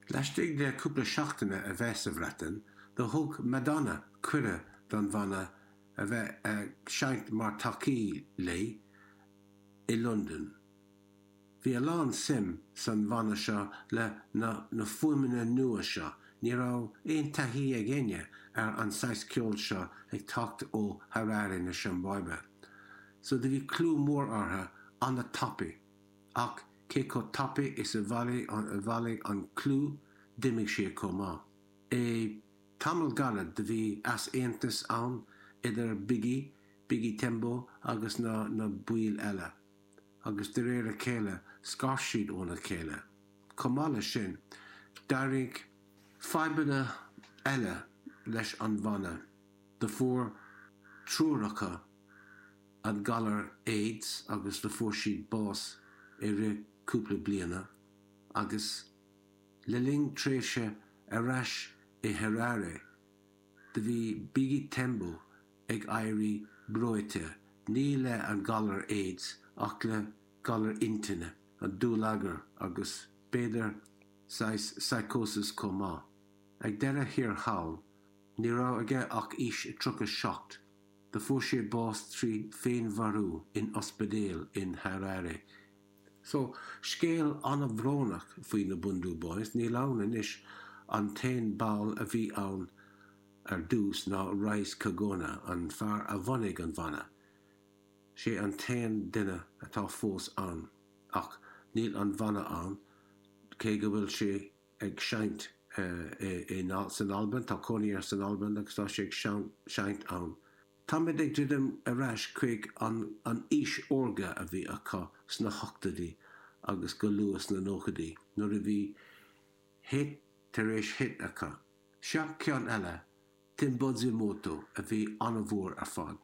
Laistigh de chúpla seachtaine a bheith sa Bhreatain, do thug Madonna cuireadh don bhanna a bheith ag seinnt mar thacaí léi i Londain. Bhí a lán suim san bhanna seo le na fuaimeanna nua seo, ní raibh aon taithí ag einne ar an saghas ceol seo ag teacht ó Harare na Siombáibe, so do bhí clú mór ortha an-tapaidh. Ach cé chomh tapaidh is a bhailigh an clú d'imigh sé chomh maith. I dtamall gairid do bhí easaontas ann idir Biggy, Biggy Tembo agus na na baill eile. Agus de réir a chéile scar siad óna chéile. Chomh maith leis sin d'éirigh fadhbanna eile leis an bhanna. Do fuair triúr acu. an galar aids agus do fuair siad bás i rith cúpla bliana agus le linn tréimhse ar ais i Harare do bhí Biggy Tembo ag éirí breoite ní le an galar aids ach le galar intinne, an dúlagar agus b'fhéidir saghas psychosis chomh maith. Ag deireadh thiar thall ní raibh aige ach aois 37. Do fuair sé bás trí féinmharú in ospidéal in Harare. So, scéal an-bhrónach faoi na Bhundu Boys, níl ann anois, an t-aon ball a bhí ann ar dtús ná Rise Kagona, an fear a bhunaigh an bhanna. Sé an t-aon duine atá fós ann, ach níl an bhanna ann, cé go bhfuil sé ag seinnt san Albain, tá cónaí air san Albain agus tá sé ag seinnt ann. Táimid ag druidim ar ais chuig an aois órga a bhí acu sna hochtóidí agus go luath sna nóchaidí nuair a bhí hit tar éis hit acu. Seo ceann eile, Timbuzimoto, a bhí an-mhór ar fad.